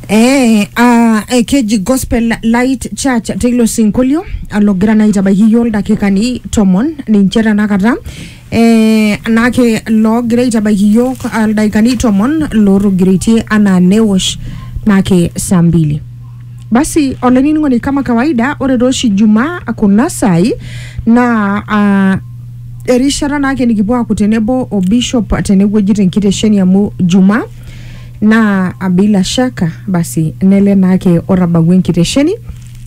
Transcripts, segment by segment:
Eh, ah, eh, keji gospel light church teilo sinkolio alogira naa aitabaiki yioo ildakikani tomon ninche tenakata eh, naake loogira aitabaiki yiok ildakikani tomon lootogiroitie anaa newosh naake saa mbili Basi olainining'oni kama kawaida ore tooshi Jumaa kuna saai naa ah, erishata naake nikipuo aaku tenebo o bishop tenewueji tenkitesheni amu Jumaa naa ah, bila shaka basi nele naake otabawua enkitesheni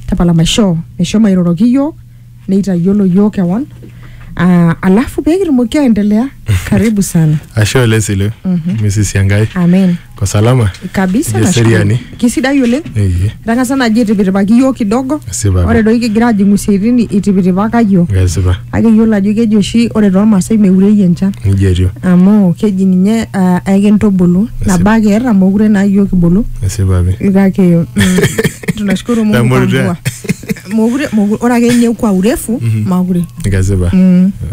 tapala maishoo meshomo airoroki iyiook neitayiolo yiok kewon uh, alafu pee kitumoki aendelea karibu sana ashe oleng sile Mrs. Siangai amen ko salama kabisa Ijo nashukuru. seriani. kisidai oleng Eye. etang'asa naji aitipitipaki yiok kidogo Esipa pi. ore doi kigira ajing'u isiaitin itipitipaka yiok ngesipa kake yiolo ajo keji oshi ore toolmaasai meurei enchan nijia etiu amu keji ninye uh, aikintubulu nabo ake eeta mokure naa yiok kibulu esipa pi kake mm, tunashukuru mungu kwa Tamorita. mvua mokure mokure ore ake ninye kwa urefu makure Kesipa.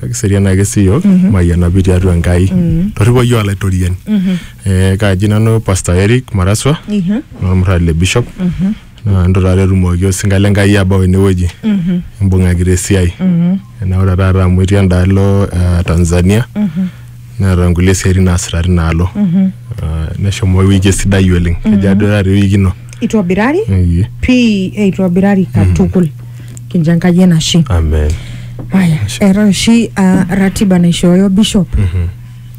Kiserian ake sii yiok mayianapi tiatua Enkai. Torripo yiok olaitoriani. Eh, Kaaji nanu Pastor Eric Maraswa Ihe. olmurrani le Bishop. Naa entu taata etumoki osinka le Enkai abau enewueji. Imbung'akita esiai. Enaura taata amu etii endaalo eh, Tanzania. neeta nkulie siatin naasita tina alo Mhm. Ah, neshomo ewueji sidai oleng kejo Mhm. ajo taata ewueji ino itobirari Iyie. pii eitobirari katukul kincho enkai enashe amen aya eeta oshi ah, ratiba naishooyo bishop Mhm.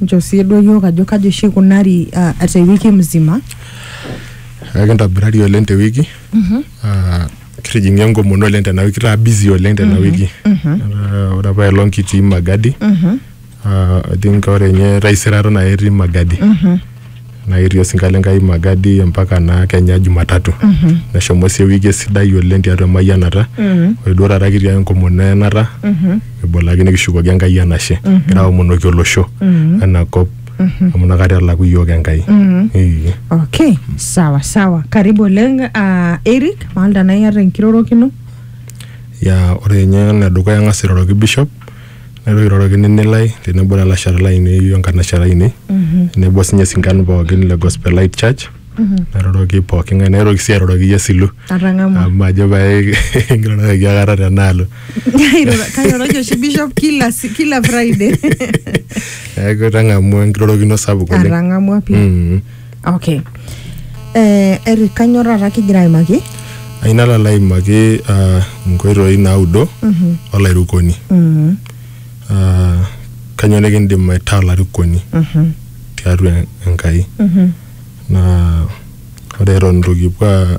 nchoo sii duo yiok ajo kaji oshi ikunari ah, te wiki mzima ekintobirari oleng te wiki Mhm. Ah, kitijing'a enkomono oleng tena wiki kitaa busy oleng tena Mhm. wiki Mhm. Ah, ore apa elong kitii magadi Mhm. Ah, I think ore nye taisere aton ake etii Magadi. Naa ketii osinka le Nkai Magadi mpaka naa kenya Jumatatu. Neshomo sii ewiki esidai oleng tiatua emayianata. Ore duo taata kitii ake enkomono eyanata. Kibol ake nikishukoki Enkai enashe. Kigira aomonoki olosho ena kop amu inakata elaku iyiook Enkai. Ee. Okay, sawa sawa. Karibu oleng uh, Eric, maalda naa iyata enkirorokino. Ya ore nye enedukuya ang'as airoroki Bishop Neitoki airoroki nini lai tenebo lalashera lainei o nkanashera ainei tenebo sinye sinkan pookin le Gospel Light Church nairoroki pooki ng'ae naitoki sii airoroki iyie Silu Atang'amua. amu majo pae king'iroroki aikata tenaalo Kairoro- kairoroki oshi bishop kila si- kila friday neeku itang'amua enkirorokino sapuk oleng atang'amua pii Mm. okay eh, Eric kanyor taata kigira aimaki aina lala aimaki ah, nkoitoi naudo Mhm. olairukoni Mhm. Ah, kanyoo nikindim aitaa olarikoni Mhm. tiatua Enkai Mhm. naa ore eton itu kipuo a-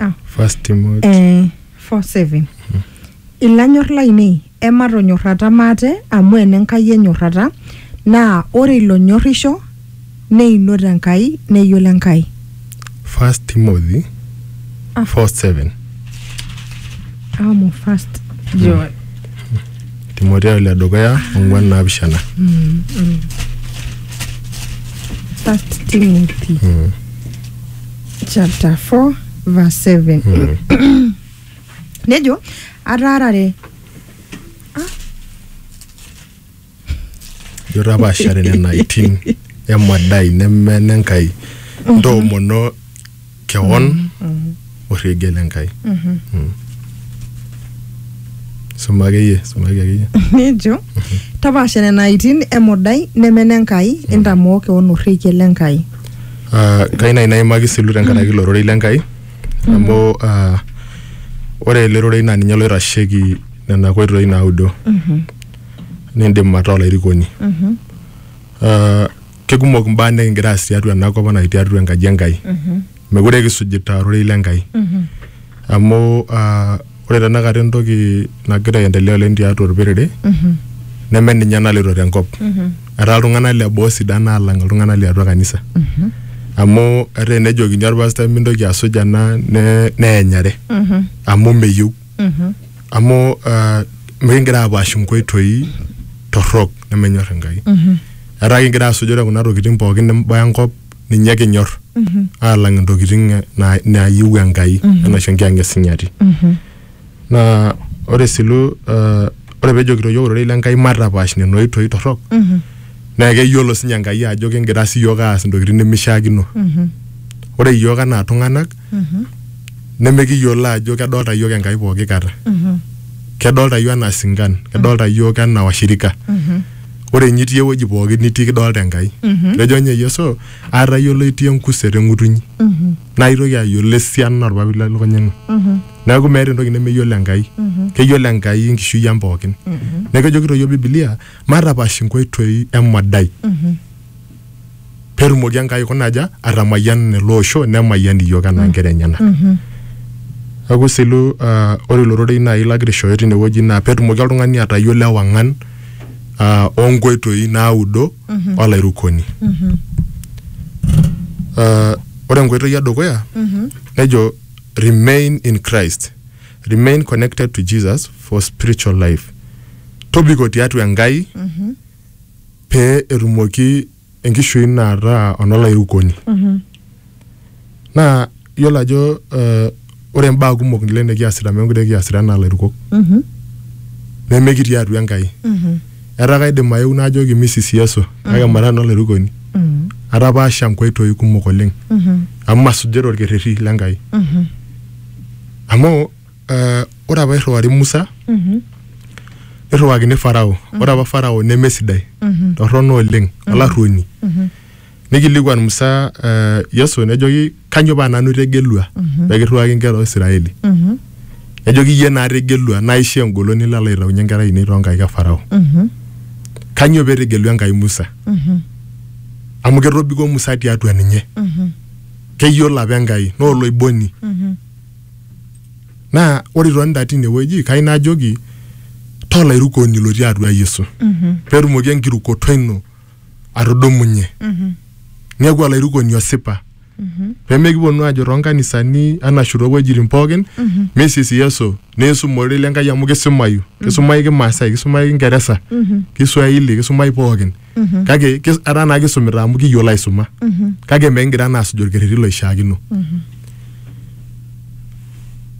Ah. first Timothy Eh, 47 ilanyor lainei ematonyorrata maate amu enenkai enyorrata naa ore ilonyorrisho neinot enkai neyiolo enkai first Timothy Ah. 4 7 amu first joy timoteo le dukuya ong'uan naapishana first timothy Mm. chapter 4 verse 7 Mm. nejo ataarare Ijo tapaashare nena itin emadai neme nenkai ntoomono kewon orregie lenkai Mm. suma akeyie sumaki akeyie nejo tapaasha nena aitin emodai neme nenkai intamoo kewon orrekie lenkai Ah, kai nai naimaki silu tenkaraki ilo rorei lenkai amu ah, ore ele rorei naa ninye loitasheki nena koitoi naudo nindim ataa olairikoni Ah, kekumok imbaa nikingira aas tiatua ena kop anaa tiatua enkaji enkai mekure kisujita ororei le nkai amu ah, ore tenakata entoki nagira aendelea oleng tiatua orperere neme ninye naloito tenkop etaa iltung'anak le boo sidan alang iltung'anak liatua kanisa amu etaa enejokini orpastai mintoki asuj ena ne- neenyare amu meyieu Mhm. amu uh, mikingira apaash inkoitoi torrok nemenyor enkai Mhm. etaa kingira asujore kuna tokitin pookin nimbaya enkop ninye kinyor Mhm. alang intokitin eh, na- naayieu enkai Mhm. anaa oshi enkianga esinyati Mhm. naa ore silu uh, ore pejokito yiok ororei lenkai matapaash nena oitoi torrok Mhm. naa keyiolo sinye enkai ajo kingira siyiok aas intokitin nemishiakino Mhm. ore yiok anaa tung'anak nemikiyiolo ajo kedolta iyiook Enkai pooki kata. Kedolta iyiook anaa sinkan, kedolta iyiook anaa washirika. Ore ninye itii ewueji pooki nitii kidolta Enkai. Etejo ninye Yeso, aatayiolo itii enkuset eng'utunyi. Naa aitoki ayiolo esiana olpapit le lukunya ino. Neeku meeta entoki nemeyiolo Enkai. Keyiolo Enkai enkishui ang pookin. Neeku kejokito iyiook bibilia, matapaash inkoitoi emodai. petumoki Enkai aikuna aja atamayian ele osho nemayian iyiook anaa nkera enyenak. Neaku selu uh, ore ilo rorei naaji lagira aishooyo tinewueji naa petumoki oltung'ani atayiolo ewang'an uh, onkoitoi naudo olairukoni. Uh, ore enkoitoi edukuya nejo remain in Christ, remain connected to Jesus for spiritual life. Tobiko tiatua Enkai pee etumoki enkishui ino ataa onolairukoni naa iyiolo ajo eh, ore imbaa kumok nile nikiasita meekure kiasita enaa ilairukok nemekitii atua Enkai etaa kaidim ayeu najoki misisi Yesu kake mara nanu olairukoni atapaasha inkoitoi kumok oleng amu masujita orkerreti le Nkai amu Eh, ore apa irriwari musa nirriwakini farao ore apa farao nemesidai torrono oleng olarruoni nikilikuan musa eh, yesu nejoki kanyo paa nanu itegelua pekirriwaki inkera oisiraeli nejoki iyie naa ategelua naisho engolon nilo alo aitaunyie inkera ainei toonkaik e farao kanyo petegelua enkai musa amu ketobiko musa tiatua ninye keyiolo apa enkai naa oloiboni naa ore itonita tinewueji kai najoki tolairukoni lotii atua yesu petumoki enkirukoto ino atudumunye niaku olairukoni osipa pemekiponu ajo tonkanisani anashu towuejitin pookin misis yesu niisum ororei lenkai amu kisumayu kisumai kimaasai kisumai kingeresa kiswahili kisumai pookin kake kis- etaa naa kisumita amu kiyiolo aisuma kake mekigira naa asuj orkerreti loishiakino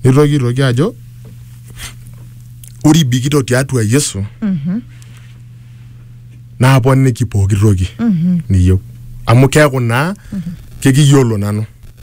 nitoki aitoki ajo ore ibikito tiatua yesu naaponiki pooki toki niyieu amu keeku naa kekiyiolo nanu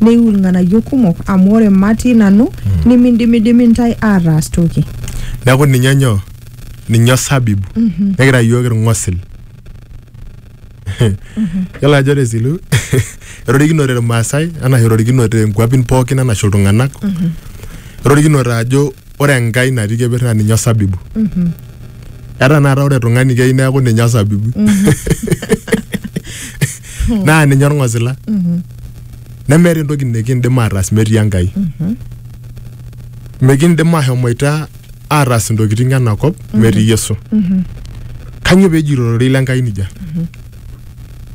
neiu ilng'anayio kumok amu ore matii nanu nimindimidimi ntae aataas toki neeku ninye nyoo ninye osabibu nikira iyiook irng'osil yiolo ajo ore silu erorikinote irmaasai anaa erorikinote inkuapin pookin anashe iltung'anak erorikinote ajo ore enkai natii keper naa ninye osabibu etaa naata ore tung'ani keyieu neeku ninye osabibu naa ninye orng'osila nemeeta entoki nikindim ataas metii enkai mikindim ahomoita ataas intokitin enakop metii yesu kanyio peejito ororei lenkai nijia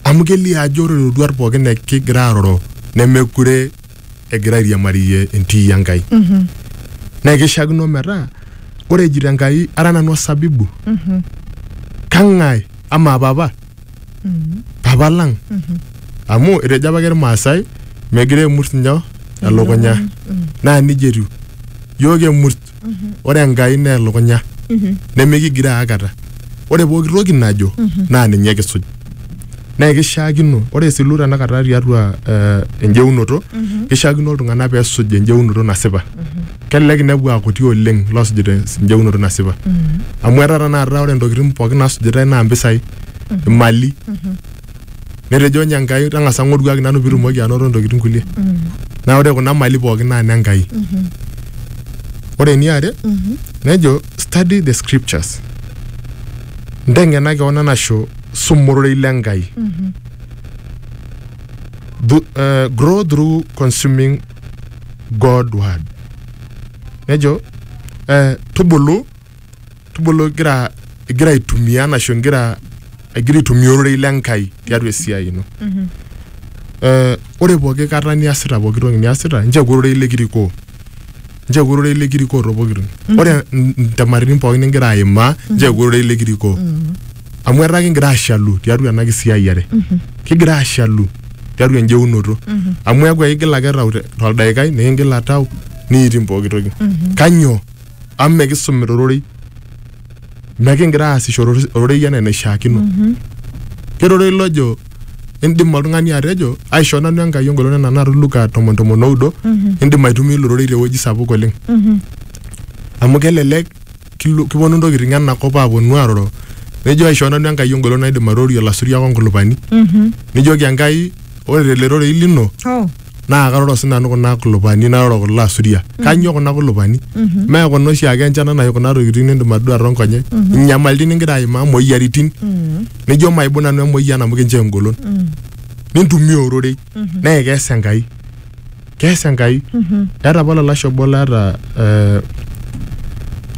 amu kelio ajo ore iroruat pookin nikigira aroro nemekure egira airiamariyie entii Enkai. Naa keishiakino metaa ore ejito Enkai ara nanu osabibu, kang'ae amaa papa? Papa lang. Amu etejo apake Ilmaasai megira aimut nyoo? Elukunya. Naa nijia etiu. Iyiok emut ore enkai naa elukunya nemikigiroo aikata ore pooki toki najo naa ninye kisuj naa kishaakino ore esilu tanakata tiatua eh, enjeunoto kishaakino iltung'anak peesuj enjeunoto nasipa kelelek inepu akuti oleng loosujita enjeunoto nasipa amu etaa tanakata ore intokitin pookin naasujitae naa impisai imali netejo ninye Enkai tang'asa ng'oruaki nanu pitumoki anoto ntokitin kulie naa ore kuna mali pookin naa ne Enkai ore eniare nejo study the scriptures nteng'ena keon anasho suma ororei le Enkai Thu- eh, grow through consuming God word nejo eh, tubulu tubulu igira igira aitumia anashu igira igira aitumia ororei le Nkai tiatua esiai ino. Eh, ore pooki kata niasita pooki toki niasita nchoo ororei likirikoo nchoo ororei likirikoo too pooki toki ore n- ntemaritin pooki nigira aimaa nchoo ororei likirikoo amu etaa kigira ashalu tiatua ena kisiayiare kigira ashalu tiatua enjeunoto amu eeku ekigil ake tau te- toldaikai nikingila tau niiting pooki toki kanyoo amu mekisumita ororei mekingira aasishore oro- ororei enaa enaishiakino kera ororei lojo indim oltung'ani atejo aisho nanu enkai engolon enaa naata luka tomon tomon oudo indim aitumia ilo rorei tewueji sapuk oleng amu kelelek kilo- kiponu ntokiting enakop aponu aroro nejo aisho nanu enkai engolon naidim aitorio ilasuriak onkulupani nijoki enkai ore tele rorei lino Oh. naa karoro sii nanu kuna kulupani naroro kulo asuria kanyoo kuna kulupani mee kuna oshiake enchan anaa kuna tokitin nindim atodua toonkonyek inyamalitin ningira aimaa moyiaritin nijo maibung nanu emoyian amu kinchoo engolon nintumia ororei naa ekees enkai kees enkai eeta apa olalashe obo laata eh,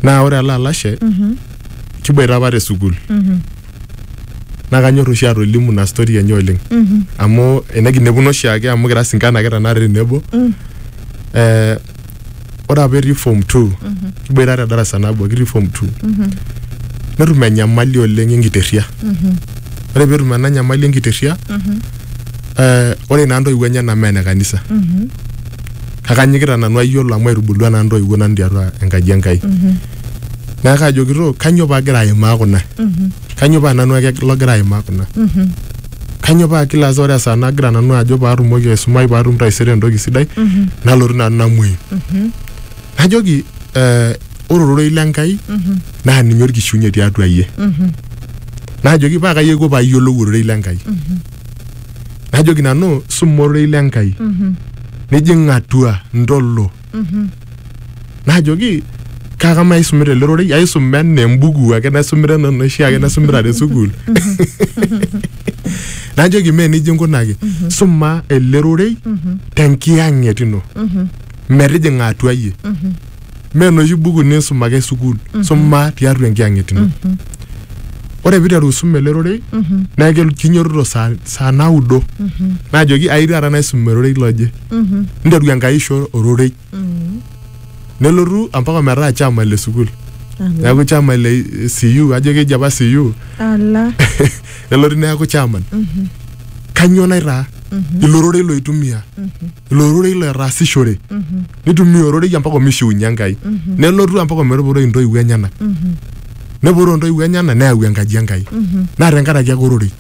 naa ore ele alashe kiboita apa te sukuul naa kanyor oshi atolimu ina story enye oleng amu enekinepuno oshiake amu kira sinkan ake tenakata tenebo eh, ore apa etii form two kiboita te darasa nabo kitii form two netum enyamali oleng enkiterria ore peetum ena nyamali enkiterria eh, ore naa ntoiwuo enyenak mee ene kanisa kake anyikita nanu ayiolo amu aitubulua naa ntoiwuo nanu tiatua enkaji Enkai naa kaajo kitok kanyoo paagira aimaa kuna kanyoo paa nanu ake logira aimaa kuna kanyoo paa kila saa ore esaa nagira nanu ajo paatumoki aisumai paatum taisere entoki sidai nalotu nanu namuoyu najoki eh, ore ororei lenkai naa ninye orkishiunye tiatua iyie najoki paa kai aiko paayiolou ororei lenkai najoki nanu suma ororei lenkai nijing atua ntolo najoki kaka maisumita ele rorei aisum enaa embuku ake naisumita enaa enoshi ake naisumita te sukuul najoki mee nejia inkunaki suma ele rorei tenkiyang'et ino metijing'a atua iyie mee enoshi buku niisum ake sukuul suma tiatua enkiyang'et ino ore piiteru aisum ele rorei naa kelo- kinyototo saa, saa naudo najoki ai taata naisum ororei loje ninteru enkai aisho ororei nelotu ampaka metaa chama le sukuul neeku chama le CU ajo keji apa CU ala nelotu neeku chairman kanyoo naitaa ilo rorei loitumia ilo rorei lotaasishore nitumia ororei ampaka omishiunye enkai nelotu ampaka ometupuroi intoiwuo enyenak nepuroo intoiwuo enyenak neyau enkaji enkai naa tenkaraki ake ororei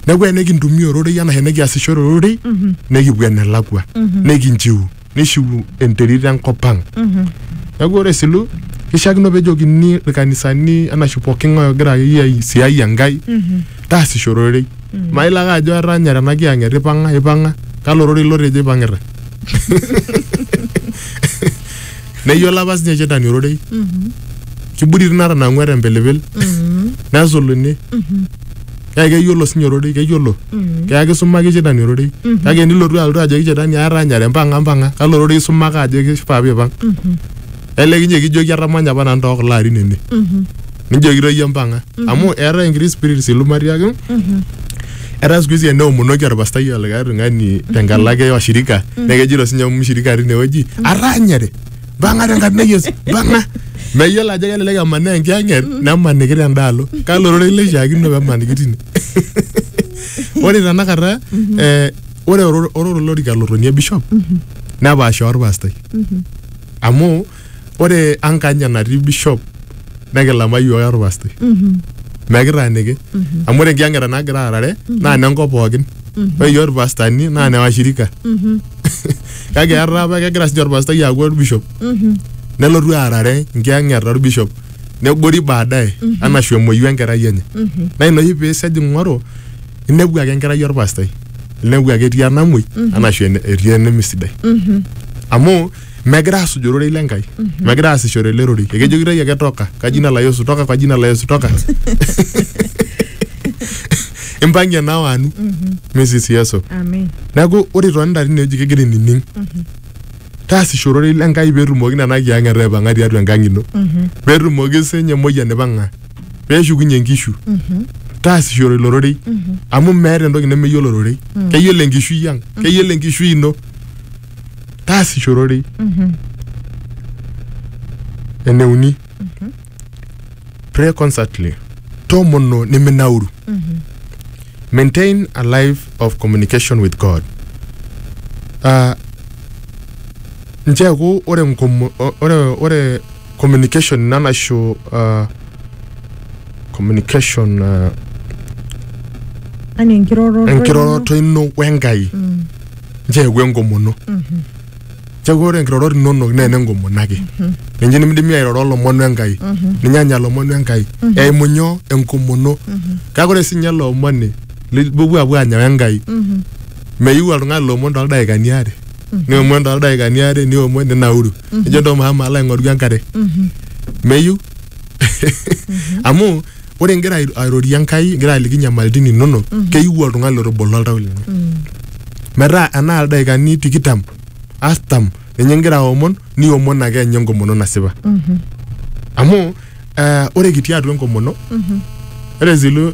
neeku enikintumia ororei anaa enikiasishore ororei nikipuo enelakua nikinchiu nishiu enterit enkop ang neeku ore silu kishiakino pejokini irkanisani anashu pooki ng'ae ogira akeyie aisiai Enkai taasisho ororei mailo ake ajo etanyare ena kiyang'et ipang'a ipang'a kalo ororei lotejo ipang'ita neyiolo apa sinye shetani ororei kiburiti natanang'ua tempilipil nesuluni kake keyiolo sinye ororei keyiolo kake kisumaki shetani ororei kake nilotu alotu ajoki shetani aata anyare mpang'a mpang'a kalo ororei isumaka ajo kifaa piipang elekinye kijoki atamanya apa nanu tookulo arin ene nijoki toi iyie mpang'a amu eetae enkiti spirit siluma tiake etaa siku hizi eneomonoki orpastai olikae tung'ani tenkalo ake oshirika naa kejito sinye mshirika tinewueji aranyare mpang'a tenkarna e Yesu mpang'a meyiolo ajo kelelek emanaa enkiyang'et nemaniki tendaalo kalo ororei leishiakino pemaniki tine ore tenakata eh, ore oro- ororo olorika lotonie bishop nepaasha orpastai amu ore ankany enatii bishop nekilama iyiook ake orpastoi mekitaaniki amu ore enkiyang'eta nagira aarare naa nenkop pookin ore iyiook irpastani naa ne washirika kake etaa apa kegira sinye orpastai aaku orbishop nelotu aarare nkiyang'eta orbishop negori baadaye anashu emuoyu enkerai enye naa ina oshi piisej ing'oru inepu ake enkerai orpastai inepu ake etii enamuoi anashu ene- etii enemisidai amu megira aasuj ororei le Nkai megira aasishore ele rorei ekejokitoi ake toka kwa jina la Yesu toka kwa jina la Yesu toka impang'ie nao anu Mrs Yesu Amen. neeku ore itonita tinewueji kegira inining taasisho ororei le Nkai peetumoki nena kiyang'eta aipang'a tiatua enkang ino peetumoki sinye emoyian aipang'a peeshukunye nkishu taasishore ilo rorei amu meeta entoki nemeyiolo ororei keyiolo enkishui ang keyiolo enkishui ino taasisho ororei Mhm. eneuni pray constantly tomono niminauru Mhm. maintain a life of communication with god uh, ncheeku ore nkomo- o- ore ore communication ina naisho uh, communication uh, Yaani enkiroroto. enkiroroto ino wenkai Mm. ncheyau enkomono ncheyau ore nkirorot inonok naa ene nkomono ake ninche nimidimi airoro olomon enkai ninye anya lomon enkai eimu nyoo enkomono kake ore sinye ele omoni lipuopuo apuo anya wenkai meyieu oltung'ani lomon toldaikani aare niomon toldaikani aare niomon ninauru nijo ntoo maama alo aing'oru enkare meyieu amu ore ingira ai- airorie enkai ingira aliki nyamalitin inonok keyieu oltung'ani lotobolo oltau lenye metaa enaa ildaikani tikitam artam ninye ingira aomon niomon ake enye enkomono nasipa amu eh, ore kitii atua enkomono ore zilu